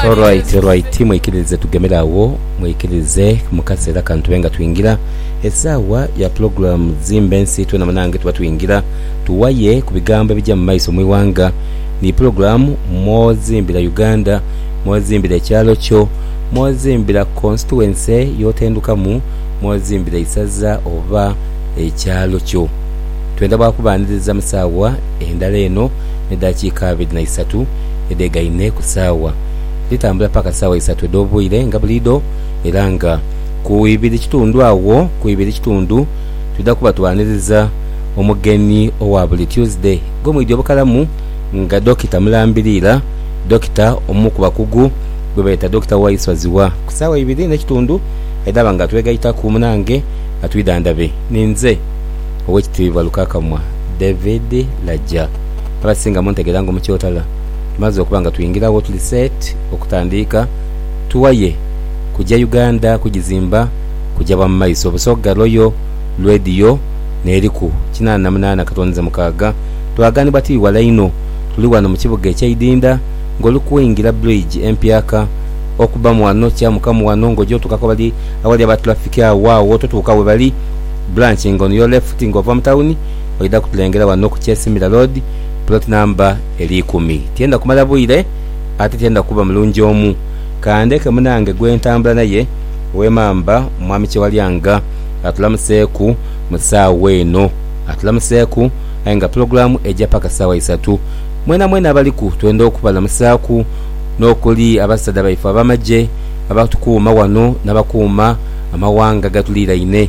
Alright, alright, mwikiririze tugemere agho, mwikiririze mu kaseera kano tube nga twingira esaawa ya pulogulaamu Zimba Ensi twena munange tuba twingira tuwaye ku bigambo ebija mu maiso mu ighanga. Ni pulogulaamu mw'ozimbira Uganda, mw'ozimbira ekyalo kyo, mw'ozimbira konsituwense y'otendukamu, mw'ozimbira eisaza oba ekyalo kyo. Twenda bwakubaaniriza mu saawa endala eno n'edaakiika abiri na isatu. edheega ine ku saawa, dhitambula paka saawa isatu edh'obwire nga buliidho era nga ku ibiri kitundu agho ku ibiri kitundu twidha kuba twaniriza omugeni owa buli Tuesday gwe mwidhi obukalamu nga Dokita Mulambiriira, Dokita omu ku bakugu gwe beeta Dokita Waiswaziwa. Ku saawa ibiri n'ekitundu edhaba nga twegaitaku munange atwidhandhabe ninze Owekitiibwa Lukakamwa David Laja. abasinga muntegera nga omukyotala tumaze okuba nga twingiragho tuli set okutandiika tuwaye kuja Uganda kugizimba kuja bwa mumaiso Busoga Royal Radio neriku kinana na munana katonize mukaga twaganibwa tiri wala inho tuli wano mukibuga ekye Idinda nga olikuingira bridge empyaka okubamu wano kyamukamu wano nga oja otukaku awali aba traffic agho agho totuuka webali branch nga on your left nga ova mutawuni oidha kutulengera wano ku Kyesimbira Road, Plot Number eri ikumi. Tiyenda kumala bwire ate tiyenda kuba mulungi omu. Ka ndeke munange gwe ntambula naye ow'emamba Mwami Kyewalyanga atulamuseeku mu saawa eno. Atulamuseeku aye nga pulogulaamu eja paka saawa isatu. Mwenamwena abaliku twenda okubalamusaaku n'okuli abasaadha baife ab'amagye abatukuuma wano n'abakuuma amawanga agatuliiraine.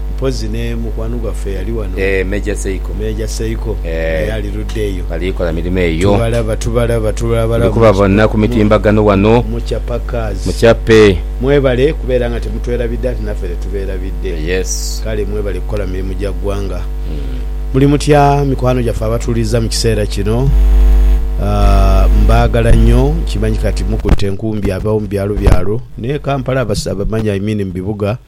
Mpozi ne mukwano gwaffe eyali wano. Eeh Major Seiko. Major Seiko Eeh. naye ali ludda eyo. Bali kola mirimo eyo. Tubalaba tubalaba tubalaba. Tuli kubabona ku mitimbagano wano. Muchapakaz. Muchape. Mwebale kubeera nga temutwerabidde ate naffe tetubeerabidde. Yes. Kale mwebale kukola mirimu gya ggwanga. Muli mutya mikwano gyaffe abatuwuliriza mu kiseera kino? Aah mbaagala nnyo. Nkimanyi kati mukutte enkumbi abawo mu byalo byalo n'e Kampala abamanyi I mean mu bibuga.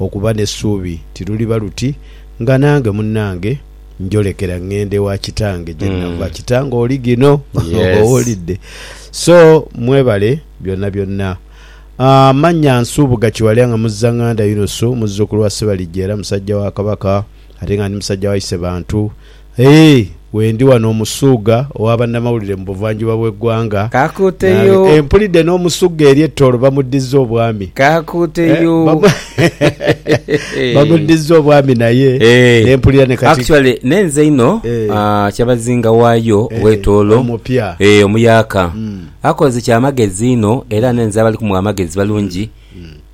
Okuba n'esuubi tiruliba luti nga nange munnange njolekera ngenda ewa kitange gye nava. Kitange oli ghino, owulidde? So mwebale byonabyonna. Amannya Nsubuga Kiwalya nga muzzanganda Yunusu muzzukulu wa Ssebalijja era musajja wa Kabaka ate nga ndi musajja wa Isebantu. Aye wendi wano Omusuugha owa bannamawulire mu buvanjuba bw'eggwanga, nange e mpulidde n'Omusuugha eri e Tooro bamuddizza obwami, bamuddizza obwami naye ne mpulira ne kati, omuyaka, akoze kya magezi inho era n'enze abali kumuwa amagezi balungi.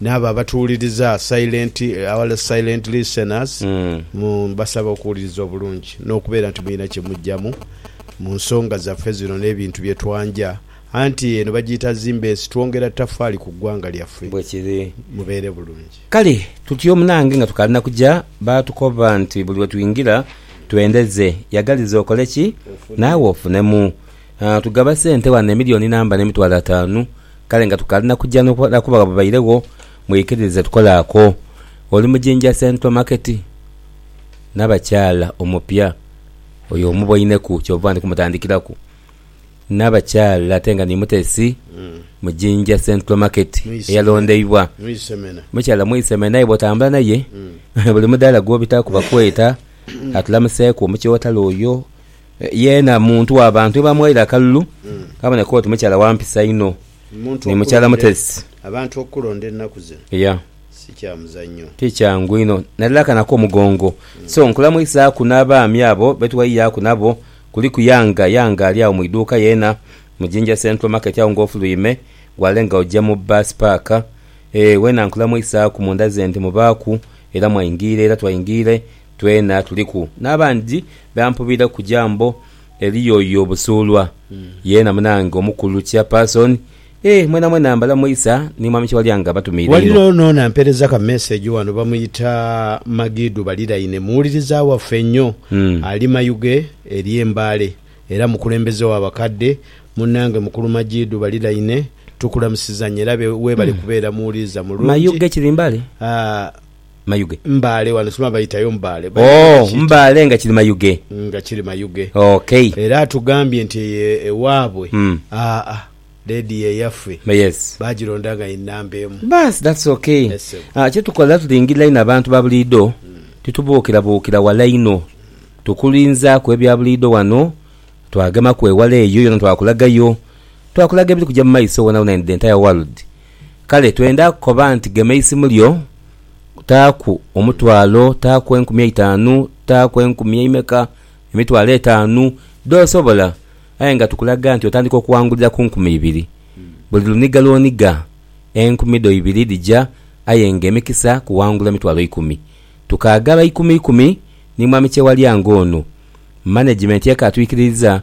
N'abo abatuwuliriza, silent, our silent listeners, mu, mbasaba okuwuliriza obulungi, n'okubeera nti mulina kye muggyamu mu nsonga zaffe zino n'ebintu bye twanja. Anti eno bagiyita Zimbeesi, twongera ttafaali ku ggwanga lyaffe. Bwe kiri. Mubeere bulungi. Kale, tutyo munange nga tukaali na kuja, baatukoba nti buli we twingira, twendeze. Yagaliza okole ki? Naawe ofunemu. Tugaba sente ghano emilioni namba n'emitwalo ataanu, kale nga tukaali na kuja n'okukola kuba gha bubairegho mwikiririze tukole ako. Oli mu Jinja Central Market n'abakyala omupya oyo omuboineku ky'ova ndi kumutandikiraku n'abakyala ate nga ni mutesi mu Jinja Central Market eyalondeibwa mukyala Mwisemena aye bw'otambula naye buli mudaala gw'obitaaku bakweta. Atulamuseeku omukyotala oyo. Yeena muntu wa bantu bamughaire akalulu kaboneka oti mukyala wa mpisa inho ni mukyala muteresi. Abantu okukulonda ennaku zino si kya muzanyo. Ti kyangu inho nadala akana ak'omugongo. So nkulamwisaaku n'abaami abo be tweyiyaaku nabo kuliku Yanga. Yanga ali agho mu iduuka yeena mu Jinja Central Market agho ng'ofuluime wale nga oja mu bbaasi paaka. Weena nkulamwisaaku munda ze nti mubaaku era mwaingiire era twaingiire. Twena tuliku n'abandi be ampubira ku jambo eli yoyo Busuulwa, yeena munange omukulu Chairperson. Eeh mwenamwena mbalamuisa ni Mwami Kyewalyanga abatumiire inho. Ghaligho n'ono ampereza ka message ghano bamuyita Magidu Baliraine muwuliriza waffe nnyo ali Mayuge eri e Mbale era mukulembeze wa bakadde. Munange mukulu Magidu Baliraine tukulamusiza nnyo era webale kubeera muwuliriza mulungi. Mayuge kiri Mbale? Mayuge. Mbaale wano sima bayitayo Mbaale. Oh Mbaale nga kiri Mayuge. Nga kiri Mayuge. Ok. Era atugambye nti eyo ewaabwe aa lady ye yaffe Yes. bagironda nga ye namba emu. Baasi that's ok. Yes ssebo. Aah kyetukola tulingirira inho abantu ba buliidho titubuukirabuukira wala inho. Tukulinzaaku ebya buliidho wano, twagemaku ewala eyo yona twakulagayo. Twakulaga ebiri kuja mu maiso wonawona in the entire world. Kale twenda kukoba nti gema eisimu lyo, taaku omutwalo, taaku enkumi eitaanu, taaku enkumi eimeka, emitwalo etaanu, dh'osobola. Aye nga tukulaga nti otandika okuwangulira ku nkumi ibiri. Buli luniga lw'oniga, enkumi dho ibiri dhija, aye nga emikisa kuwangula mitwalo ikumi. Tukaagala ikumi ikumi ni Mwami Kyewalya ng'ono. Manegimenti ekaatwikiririza.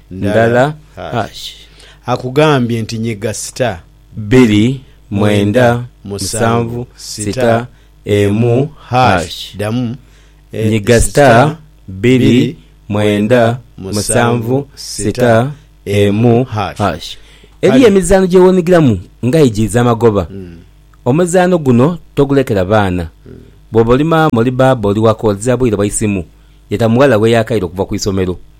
ndala hash. Akugambye nti nyiga star. Bbiri, mwenda, musanvu, sita, emu, hash. Ddamu. Nyiga star, bbiri, mwenda, musanvu, sita, emu, hash. Eriyo emizaano gye weenhigiramu nga aye giidhi amagoba. Omuzaano guno togulekera baana. Bw'oba oli maama, oli bbaabba, oli wa koodhi za bwire bwa isimu, yeta mughala we yaakaire okuva ku isomero.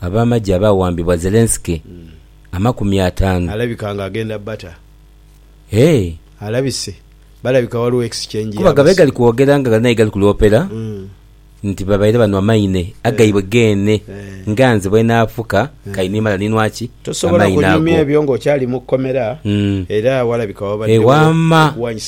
Ab'amagye abaawambibwa Zelensky amakumi ataanu. Alabika nga agenda bata. Eeh. Alabise. Balabika waliwo exchange ya basiru. Kuba ghabegali kwogera nga ghali naye gali kulwopera nti babaire banwa maine agaibwe geene nga nze bwenaafuka kayi nimala ninwa ki? Amaine ago. Tosobola kunyumya ebyo nga okyali mu kkomera era walabika wabaddewo okuwanyisa.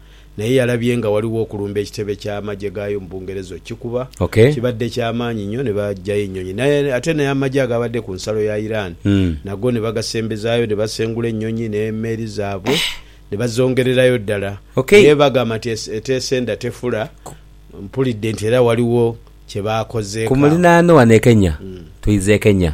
naye yalabye nga ghaligho okulumba ekitebe ky'amagye gaayo mu Bungereza okukikuba. Kibadde kya maanyi nnyo ne baggyayo ennyonyi. Naye ate n'amagye agaabadde ku nsalo ya Iran nago ne bagasembezaayo ne basengula ennyonyi n'emeeri zaabwe ne bazongererayo ddala. Naye bagamba nti eteesa enda tefula, mpulidde nti era ghaligho kye baakozeeko awo. Ku muliraano wano e Kenya, twidha e Kenya.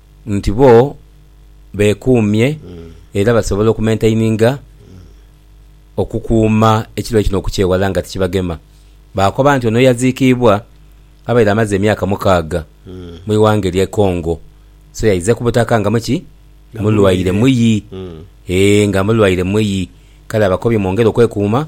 nti bo beekuumye era basobola okumentaininga okukuuma ekirwaire kino okukyewala nga tikibagema. Baakoba nti ono yaziikiibwa abaire amaze emyaka mukaaga mu ighanga erye Congo so yaize ku butaka nga muki? mulwaire muyi ee nga mulwaire muyi kale abakobye mwongere okwekuuma